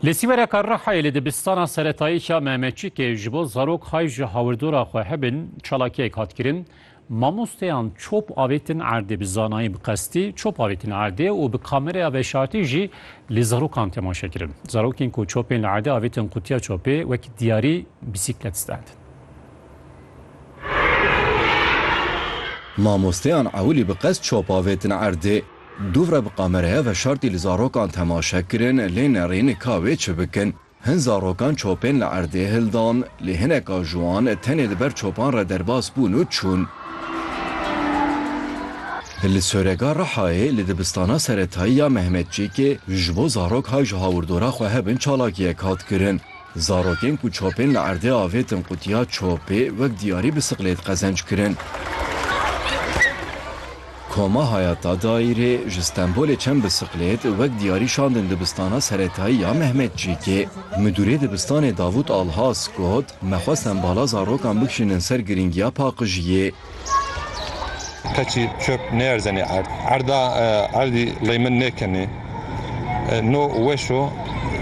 Li Sîvereka Rihayê li dibistana seretayî ya Mehmetçîkê ji bo zarok hay ji hawirdora xwe hebin çalakiyek hat kirin. Mamosteyan çop avêtin erdê bi zanayî bi qestî çop avêtin erdê û bi kameraya veşartî jî li zarokan temaşe kirin. Zarokên ku çopên li erdê avêtin qutiya çopê wekî diyarî bîsîklet standin. Mamosteyan ewilî bi qest çop avêtin erdê. Dûvre bi kameraya veşartî li zarokan temaşe kirin lê nerîn ka wê çi bikin. Hin zarokan çopên li erdê hildan lê hineka ji wan tenê li ber çopan re derbas bûn û çûn. Li Sorega Rihayê li dibistana seretayî ya Mehmetçîkê ji bo zarok hay ji hawirdora xwe hebin çalakiyek hat kirin. Zarokên ku çapên li erdê avêtin qutiya çapê wek diyarî bi siqlêt qezenc kirin. Koma Hayata Dayîrê ji Stenbolê çend bi siqlêt wek diyarî şandin dibistana seretayî ya Mehmetçîkê. Midûrê dibistanê Davut Alhas got, Me xwest em bala zarokan bikişînin ser girîngiya paqijiyê. Keçî çöp nêerzenê erd. Erda erdî ley min nêkenê. No weş o.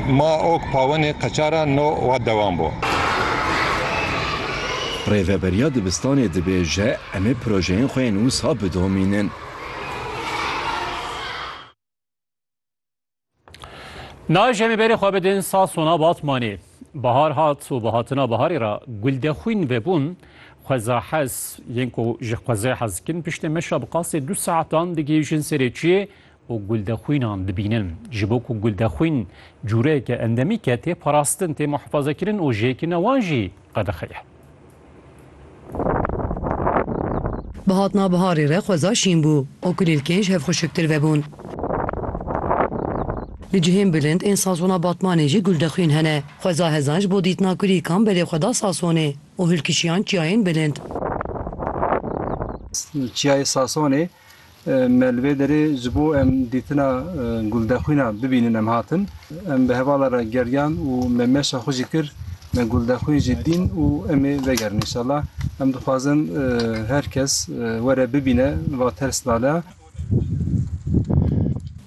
Ma ok pawenê qeçara no wa dewam bo. Rêveberiya dibistanê dibêje em ê projeyên xwe yên wisa bidomînin. Naj em ê berê xwe bidin Sasona Batmanê. Bahar hat û bi hatina biharê re guldexwîn vebûn xwezahez yên ku ji xwezê hez dikin piştê meşa bi qasê du saetan digihîjin serê çiyê û guldexwînan dibînin. Ji bo ku guldexwîn cûreyeke endemîk e tê parastin, tê muhifazekirin û jêkirina wan jî qedexe ye. Bi hatina biharê re xweza şîn bû û kulîlkên ji hev xuşiktir vebûn. Li cihên bilind ên sazona Batmanê jî guldexwîn hene. Xweza hezan ji bo dîtina kulîlkan belê xwe da sasonê û hilkişiyan çiyayên bilind. Çiyayê Sasonê Me li vê derê ji bo em dîtina Guldexwîna bibînin em hatin. Em bi hevala re geriyan û me meşa xwe jî kir. Me Guldexwîn jî dîn û em ê vegerin înşallah. Em dixwazin her kes were bibîne va ters lala.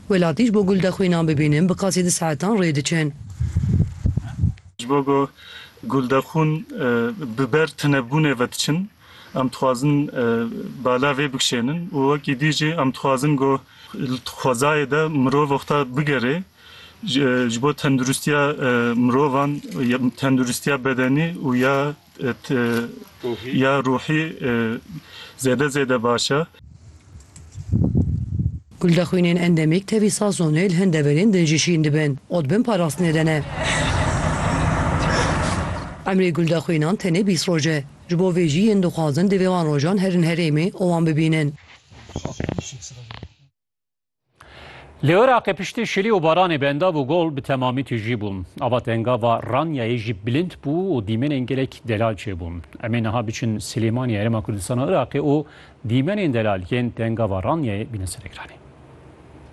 Welatî ji bo Guldexwîna bibînin bi qasî du saetan rê diçin. Ji bo ku Guldexwîn bi ber tunebûnê ve diçin. Em dixwazin bala vê bikişênin û wekî dî jî em dixwazin ku li xwezayê de mirov oxta bigerê ji bo tenduristiya mirovan ya tenduristiya bedenî û ya ya ruhî zêde zêde baş e. Guldaxwînên endemîk tevî sazonê li hin deverên din jî şîn dibin û dibin parastinê de ne. Emrê guldaxwînan tenê bîst roj e. Ji bo vê jî yên dixwazin divê wan rojan herin herêmê û wan bibînin. Li Iraqê piştî şilî û baranê benda bû gol bi temamî tijî bû. Ava tenga va Ranyayê jî bilind bû û dîmenên gelek delal çêbûn. Em ê niha biçin Silêmaniyê Herêma Kurdistana Iraqê û dîmenên delal yên tenga va Ranyayê bîne ser ekranê.